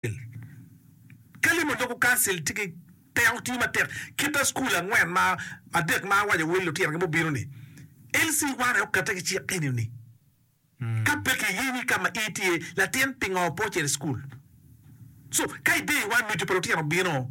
Kancil. Ka limo doko kancil tye ki teko, tiyo matek kite school angwen ma adek ma awaco wel lutino gi mubino ni, LC one aye okete ki cik eni ni, ka pe ki yini ka ma i tye latin pingo pe ocito i school? So ka ideye wa nucu pa lutino bino.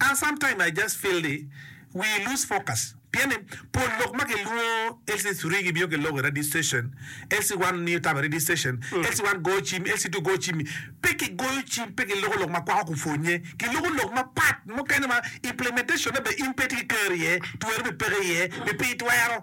An sometime I just feel ni we lose focus pien ni pol lok ma kilwongo LC three gibino ki lok i radio station, LC one miyo tam i radio station, LC one goyo cim, LC two goyo cim-mi. Pe kigoyo cim, pe kiloko lok ma kwako kupwonye. Kiloko lok mapat mukene ma implementation-ne bene in pe itye ki kero iye, tweri bene peke iye, pi pii twero.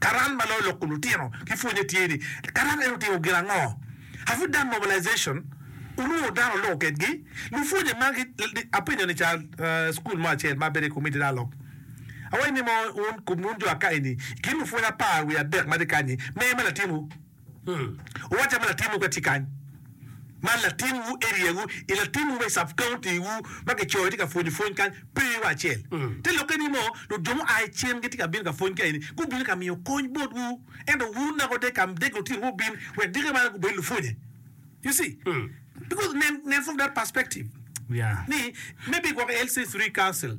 Karan ma loyo loko lutino ki pwonye tye ni, Karan en otimo gin ango? Have we done mobilization? Wulwongo dano oloko kedgi? Lupwonye magi, apenyo ni ca cukul mo acel ma abedo i komitti dok alok, awaco ni mo wun jo akayi-ni, i kin lupwony apar wiye adek ma tye kany-nyi, meya me latinwu? Uwacca ma latinwu pe tye kany, ma latinwu eriawu i latinwu me sub county wu ma kicoyo tye ka pwonyo pwony kany pe wa acel. Te lokke ni moo nut jo mua i cen gitye ka bino ka pwony ka eni gubino ka miyo kony bot wu ento wu nako de ka dege otiro wu bin wek deke bala gubed lupwonye you see because nen nen from that perspective ni maybe gwoko LC three council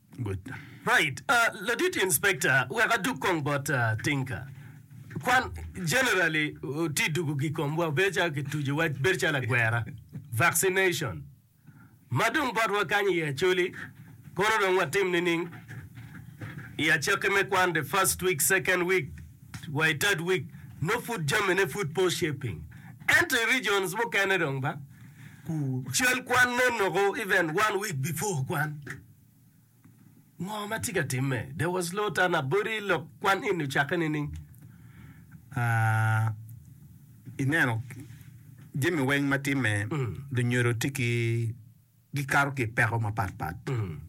Right ladit inspector wek adug kong bot Tinka. Kwan generally ti dugu gi komwa bedo calo ki tuju wa bedo calo agwera, vaccination. Ma dong bot wa kany i Acholi kono dong wa tim nining i acake me kwan the first week, second week wa i third week no pud jami ne pud po shaping. Ento i regions mukene dong ba cal kwan ne noko even one week before kwan. Ngo ma tye ka timme? There was no time na body lok kwan eni ocakke nining? Ah, ineno, jami weng ma timme, mm. lunyodo tye ki gikato ki peko mapat pat. Mm.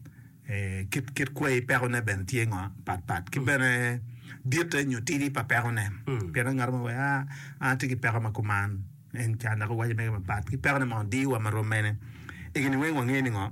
E, kit, kit kwai pekone bene tye ngo pat pat. Ki mm. bene ditte nyo tidi pa pekone. Mm. Pien ngat mo wea, an tye ki peko ma kuman. En can dok owaco mege mapat. Ki pekone ma diwa ma rommene. Egini weng wangeyo ni ngo?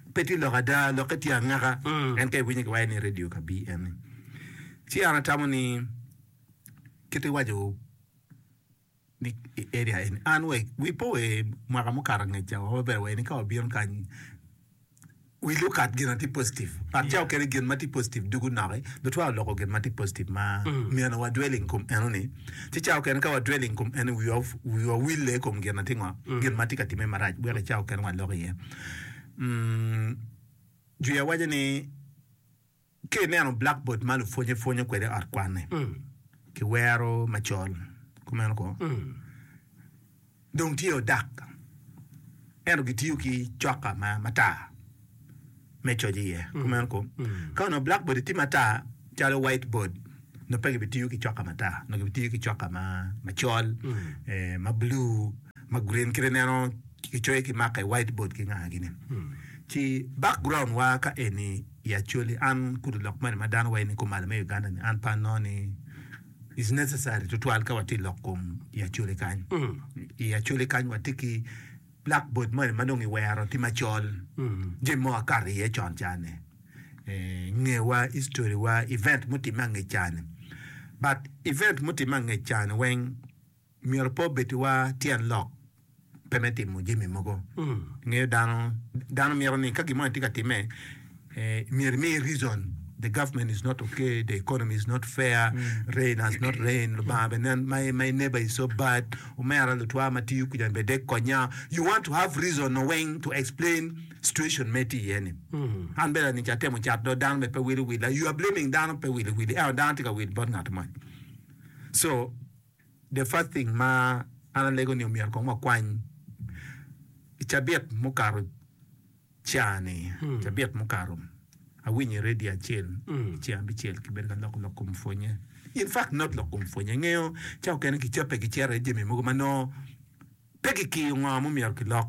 Pe tye lok ada, lokke tye angaka. En ka iwinye ki waco ni radio ka BN ni. Ci an atamo ni kit iwaco ni i area eni. An wa wi po wa mwaka mukato angec ca wa maber wa eni ka wabino kany we look at gin atye positive. Ngat ca okene gin ma tye positive dugu noki. Lutwa oloko gin ma tye positive ma myero wa dwelling kom eno ni. Ci ca okene ka wa dwelling kom eno wiwa wiwa wille i kom gin atye ngo? Gin ma tye ka timme marac weko i ca okene wa lok iye. Juya waco ni ka ineno blackboard ma lupwonye pwonyo kwede i ot kwanne ki wero macol kumeno ko dong tye odak ento gitiyo ki coka ma matar me coc iye kumeno ko ka onongo blackboard tye matar calo white board nongo pe gibitiyo ki coka matar nongo gibitiyo ki coka macol ma blue ma green kit ineno kicoyo ki marker i white board ki nga gini ci background wa ka eni i Acholi an kudi lok moni ma dano waye ni kumalo me Uganda ni an pe anongo ni is necessary tutwal ka watye lok kom i Acholi kany i Acholi kany watye ki black board moni ma dong i wero tye macol jami mo akato iye con ca ni eh, ngewa history wa event mutimme angec ca ni but event mutimme angec ca ni weng Myero pe obeddiwa tyen lok pe me timo jami mogo. Ingeyo dano, dano mito ni ka gin mo ni tye ka timme, myero imiye reason, the government is not ok, the economy is not fair, rain has not rained, Lubanga bene nen, my, my neighbor is so bad, omera lutwa ma tiyo kwija bene dek konya. You want to have reason no weng to explain situation ma itye iye ni. An bene lanica atemo cat dok dano bene pe wili willa. You are blaming dano pe wili wili, ento dano tye ka wil bot ngat moni. So, The first thing ma an alego ni omyero kong wakwany i cabit mukato ca ni, cabit mukato awinyo i radio acel i ceng abicel ki bedo ka loko lok kom pwonye. In fact not lok kom pwonye, ingeyo ca okene ki cape ki cere jami mogo ma nongo Pe kikiyo ngo ma omyero kilok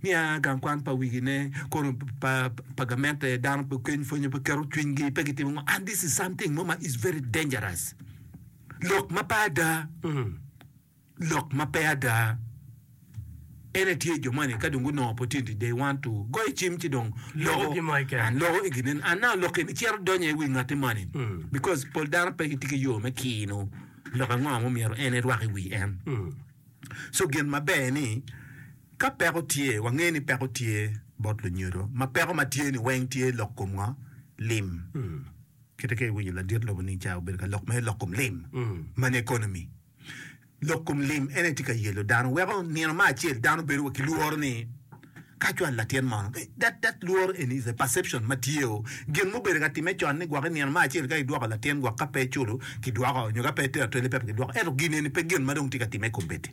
niya gang kwan pa wigi ne kono pa pa gamente dano pe keny pwonyo pe keto cwiny gi pe gitimo ngo and this is something mo ma is very dangerous lok ma pe ada lok ma pe ada ene tye jo moni ka dong gunongo opportunity they want to goyo cim ci dong Loko loko gimo keken. and loko i ginen and now lok eni cito donyo i wi ngati moni because pol dano pe gitye ki yo me kino Lok ango ma omyero en erwak i wi en? Co gin maber ni, ka peko tye, wange ni peko tye bot lunyodo, ma peko ma tye ni weng tye lok kom ngo? Lim. Kite ka iwinyo ladit lobo ni ca obedo ka lok mere lok kom lim, mani economy. Lok kom lim en aye tye ka yelo dano, weko nino ma acel dano bedo wa ki lworo ni, Ka cwal latin mo, that that lworo eni is a perception ma tye o, gin mubedo ka timme con ni gwok i nino ma acel ka idwoko latin gwok ka pe eculo ki dwoko nyo ka pe etero twelve pepe ki dwoko ento gin eni pe gin ma dong tye ka timme kombeddi.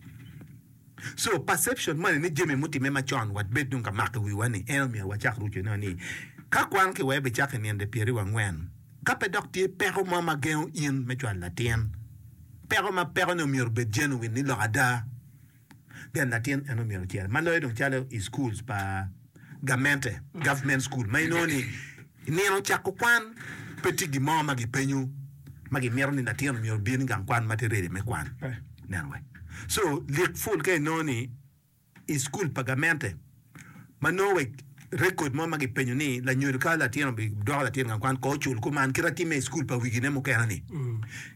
So perception moni ni jami mutimme ma con wat bed dong ka mako i wiwa ni en omyero wacak ruco eno ni ka kwan ki wee bicako i ninde pyeri wa ngwen ka pe dok tye peko mo ma gengo in me cwal latin peko ma peko ni omyero obed genuine ni lok ada. Pien latin en omyero ocer ma loyo dong calo i schools pa gamente, government school, ma inongo ni i nino cako kwan pe tye gin mo ma gi penyo ma gi mito ni latin omyero obin i gang kwan ma tye ready me kwan pe. Neno wek. So lik full ka inongo ni i school pa gamente. Ma nongo wa i rekod mo ma gipenyo ni, Lanyodo ka latin obidoko latin gang kwan, kor cul kuman kit ma timme i cukul pa wigine mukene-ni?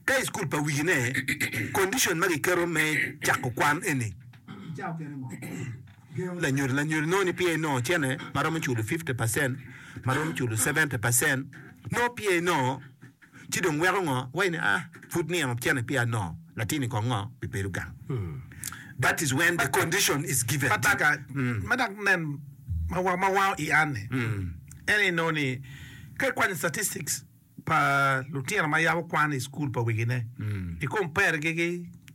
Ka i cukul pa wigine, kondicon ma giketo me cako kwan eni, gengo lanyodo lanyodo nongo ni pye nongo cene ma romo culo fifty pacent, ma romo culo seventy pacent, nongo pye nongo ci dong weko ngo wa in aa pud nino cene pia no latini kong ngo bi bedo gang that is when the condition is given ma taka ma dok nen ma wa ma wango i an ni en ni no ni ka i kwanyo statistics pa lutino ma yabo kwan i school pa wigi ne i compare gi gi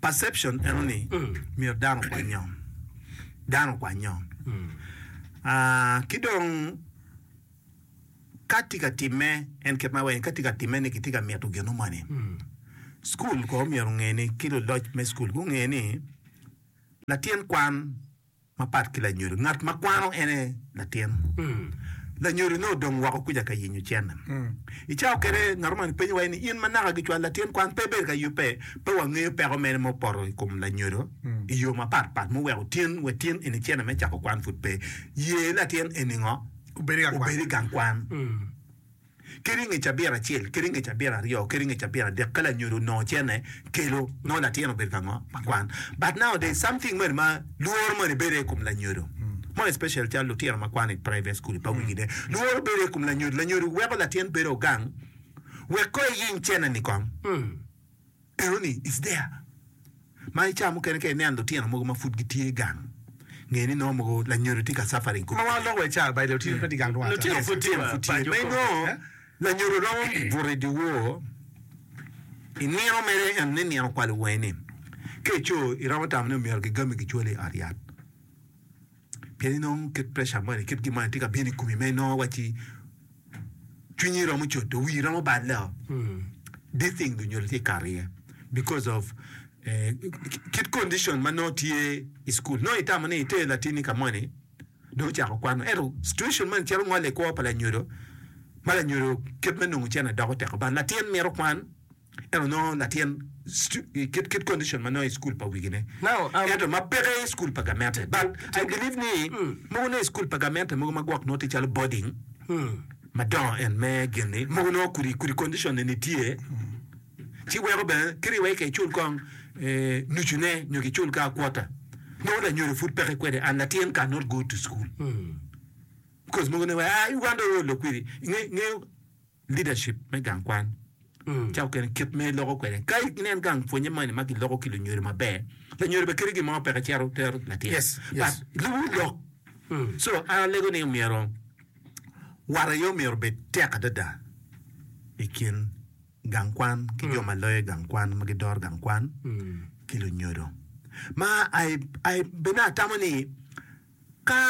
Perception eno ni myero dano okwany nyo, dano okwany nyo. Ah, ki dong ka tye ka timme, en kit ma weng, ka tye ka timme ni kitye ka mito gino moni, cukul kono myero onge ni, ki luloc me cukul gunge ni latin kwan Mapat ki lanyodo, ngat ma kwano en aye latin. Lanyodo nongo odong woko kuca ka yenyo cene. I cawa mukene ngat omoni penyo wa ni, 'In ma naka gicwalo latin kwan pe ibedo ka yubbe? Pe wangeyo peko mene ma opoto i kom lanyodo i yo mapat pat ma oweko tin wa tin eni cene me cako kwan pud pe ye latin eni ngo obed i gang kwan? ki ringo i cabit acel, ki ringo i cabit aryo, ki ringo i cabit adek, ka lanyodo onongo cene kelo, nongo latin obedo ka ngo? Ma kwan. But nowadays, something moni ma lworo moni bedo aye i kom lanyodo, more especially calo lutino ma kwano i private school pa wigi ne, lworo bedo aye i kom lanyodo, lanyodo weko latin bedo gang wek kong eyiny cene-ni kong. Pero ni, It's there. Ma i ca mukene ka ineno lutino mogo ma pud gitye gang, nge ni nongo mogo lanyodo tye ka suffering kong. Kuma wa loko iye ca by lutino pe tye gang rwata. Lutino pud tye wa paco kong. Nongo lanyodo romo buto i dyewor i nino mere ento ni nino okwalo wange ni, ka ico iromo tamo ni myero gigami gicwali i ot yat. Pien inongo kit preca moni i kit gin moni tye ka bino i komi ma inongo wacci cwinyi romo codo, wii romo balle o. This thing dong onyodo tye i kare aye because of eh, kit condition ma nongo tye i school. Nongo itamo ni iter latinni ka moni dong ocako kwano ento situation moni cito ngole i kwo pa lanyodo ma lanyodo kit me nongo cene doko teko but latin mito kwan. Ento nongo latin kit condition ma nongo i school pa wigi ne ento ma peke i school pa gamente but I believe ni mogo ne i school pa gamente mogo ma gwok nongo tye calo boarding madongo en me gin ni mogo nongo kudi kudi condition ne ni tye ci weko bene kiri wai ka icul kong nucu ne nyo ki cul ka quarter nongo lanyodo pud peke kwede and latin can not go to school because mogo ne wai ah Uganda oo lok kwidi inge inge Leadership me gang kwan ca okene kit ma iloko kwede ka inen gang pwonye moni ma giloko ki lunyodo maber lanyodo bene kadi gimo peke cito tero latin Yes, yes. but luwu lok so an alego ni omyero wat aye omyero obed tek adada i kin gang kwan ki jo ma loyo gang kwan ma gidoro gang kwan ki lunyodo ma I, I bene atamo ni ka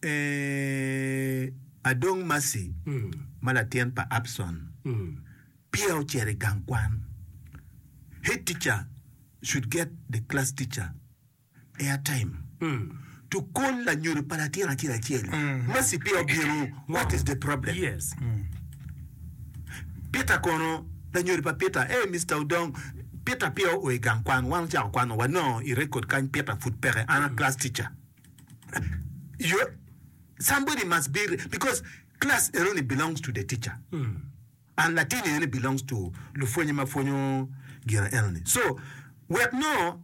Ee, adong Maci ma latin pa Abson peya ocito i gang kwan. Head teacher should get the class teacher air time to call lanyodo pa latin acel acel. Maci peya obino, what is the problem? Peter kono, lanyodo pa Peter, hey Mister Odong, Peter peya oa i gang kwan, wan ocako kwan-o, wanongo i record kany Peter pud peke, an a class teacher. Your, somebody must be re- because class enoni belongs to the teacher. And Latin enoni belongs to lupwonye ma pwonyo gino enoni. So wek nongo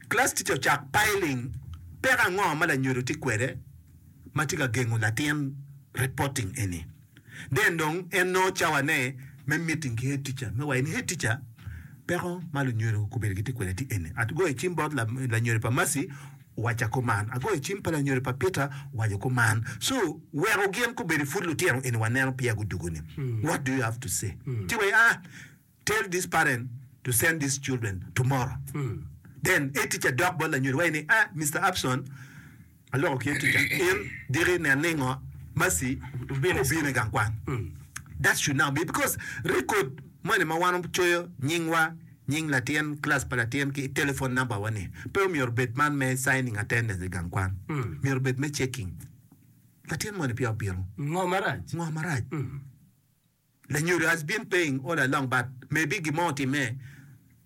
class teacher ocak piling peko ango ma lanyodo tye kwede ma tye ka gengo latin reporting eni? Deng dong en nongo cawane me meeting ki head teacher me waco ni, Head teacher, peko ma lunyodo gukobedo gitye kwede tye eni, agoyo cim bot lanyodo pa Mercy owaca kuman, agoyo cim pa lanyodo pa Peter owaco kuman, so weko gin kobedo pud lutino eni waneno peya gudugo ni, what do you have to say? Ci wa aah. Tell this parent to send this children tomorrow then a teacher dok bot lanyodo wa ni a Mister Abson aloko ki a teacher in diki nen ni ngo Mercy obino i gang kwan that should not be because record moni ma wan wacoyo nying wa nying latin class pa latin ki telephone number wa ni pe omyero obed man me signing attendance i gang kwan myero obed me checking latin moni peya obino ngo marac. Lanyodo has been paying all along but maybe gin mo otimme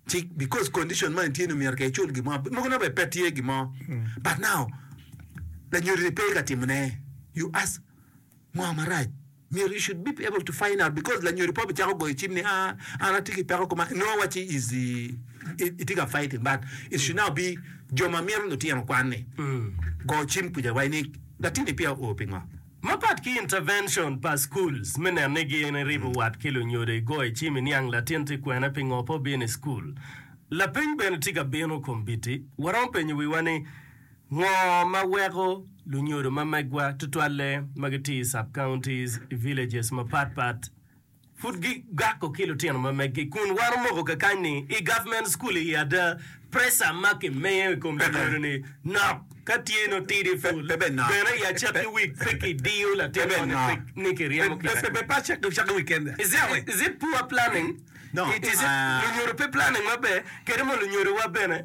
ci because condition ma en tye ni myero ka icul gin mo mogo nongo bene pe tye gin mo but now lanyodo ni pe ka timone you ask ngo marac myero you should be able to find out because lanyodo pe obicako goyo cim ni aa an atye ki peko kuma nongo wacci is itye ka fighting but it should now be jo ma mito lutino kwan ni go cim kuca wa ni latinni peya oo pingo Mapat ki intervention pa schools me neno ni gin iribo wat ki lunyodo i goyo i cim i niang latin tye kwene pingo pe obino i school. Lapeny bene tye ka bino kombiti, waromo penyo wiwa ni ngo ma weko lunyodo ma megwa tutwalle ma gitye i sub counties i villages mapat pat, pud gigako ki lutino ma megi kun wan omoko kakany ni i government school i ada pressure ma ki miyo i kom lanyodi ni nok ka tye no tidi full bene ya cek ki wig pe ki diyo latin mo ni pe ni ki ryemo kit acel is it is it poor planning it is it lunyodo pe planning maber kadi mo lunyodo wa bene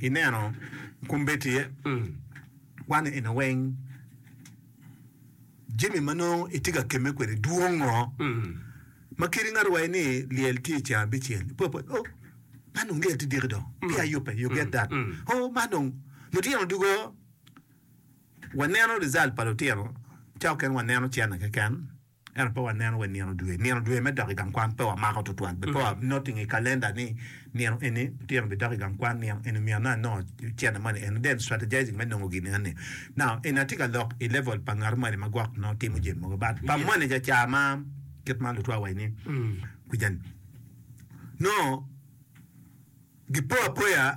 I neno kombeddi aye kwano eni weng, jami ma nongo itye ka kemme kwede dwong ngo ma kadi ngato owaci ni lyel tye ceng abicel ipo apota oh man dong lyel tye diki dong peya ayubbe you get that oh man dong lutino dugo waneno result pa lutino ca mukene waneno cene keken. Ento pe waneno wa i nino dwe. Nino dwe me dok i gang kwan pe wamako tutwal. Be pe wanoting i kalenda ni nino eni lutino bidok i gang kwan, nino eni omyero nongo anongo cente moni eno, then strategizing me nongo gin enoni. Now, eni atye ka lok i level pa ngat moni ma gwok nongo timo jami mogo. But pa moni caca ma kit ma lutwa waci ni kuca-ni nongo gipo apoya.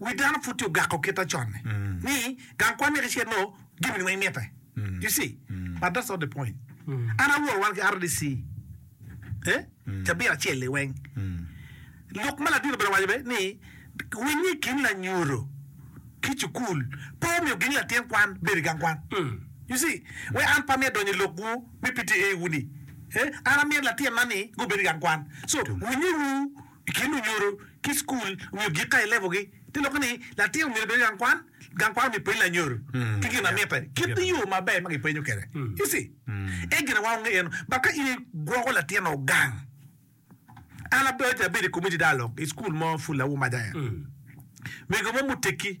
Wi dano pud tye ogako kite conne ni gang kwan myek icel nongo jami ni weng mitte you see but that's not the point an awor wan ki rdc eh cabit acel ni weng lok ma ladino bene owaco be ni winyo i kin lanyuto ki cukul pe omiyo gin latin kwan bedo i gang kwan you see wek an pe amyero donyo i lokwu me PTA wu ni eh an amyero latinna ni gubedo i gang kwan so winyo wu I kin lunyodo ki i cukul nyo gik ka i level gi, te lokke ni latin omyero obed gang kwan, gang kwan omyero peny lanyodo ki gin ma mitte kit yo ma ber ma ki penyo kede you see en gin awa onge eno but ka in i gwoko latin o gang an abedo abedo i community dialogue i cukul mo pud lawum aja en mego mo mutekki.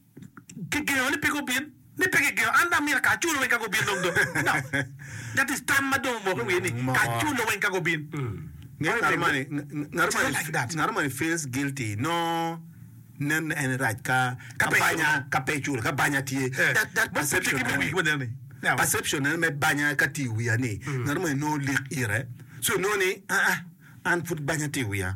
kigengo ni pe gubin, ni pe kigengo, an dong amyero kaculo weng ka gubin dong dong. No. That is tam ma dong omoko i wiye ni kaculo weng ka gubin. Ngeyo Why ngato mani, Mego? ng- ngato It's mani, not like that. ngato mani feels guilty, nongo nenne en rac ka, Ka ka pe banya, iculo. ka pe iculo, ka banya tye. Eh, That, that bot perception tiki me nene. wigi ma nene-ni. Now. Perception nene me banya ka tye i wiya ni, ngato mani nongo lik ite, so inongo ni, aa, an pud banya tye i wiya.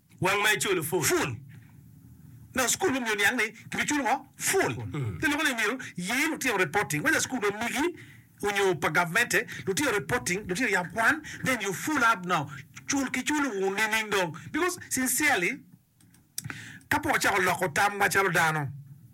Wang ma iculo full. Full. Nongo school me miyo niang ni kibi culo ngo? Full. Ki loko ni myero ye lutino reporting whether school ma migi onyo pa government-te, lutino reporting, lutino yam kwan, then you full up now. Cul ki culo wu nining dong? Because sincerely ka pe wacako loko tamwa calo dano.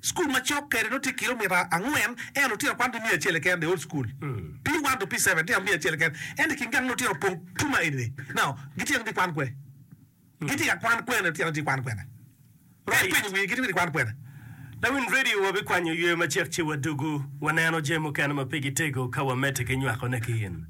Cukul macok kede nongo tye kilomita angwen, ento lutino kwan tye miya acel keken the whole school P1 to P7 litino miya acel keken ento i kin gang nongo litino opong tum ma eni ni now gitye nongo gikwan kwe? Gitye ka kwan kwene litino ni tye kwan kwene? Ka ipenyo wii gitye gikwan kwene? Lawiny radio wabikwanyo ywe macek ci wadugu waneno jami mukene ma pe gitego ka wamedde ki nywakone ki in.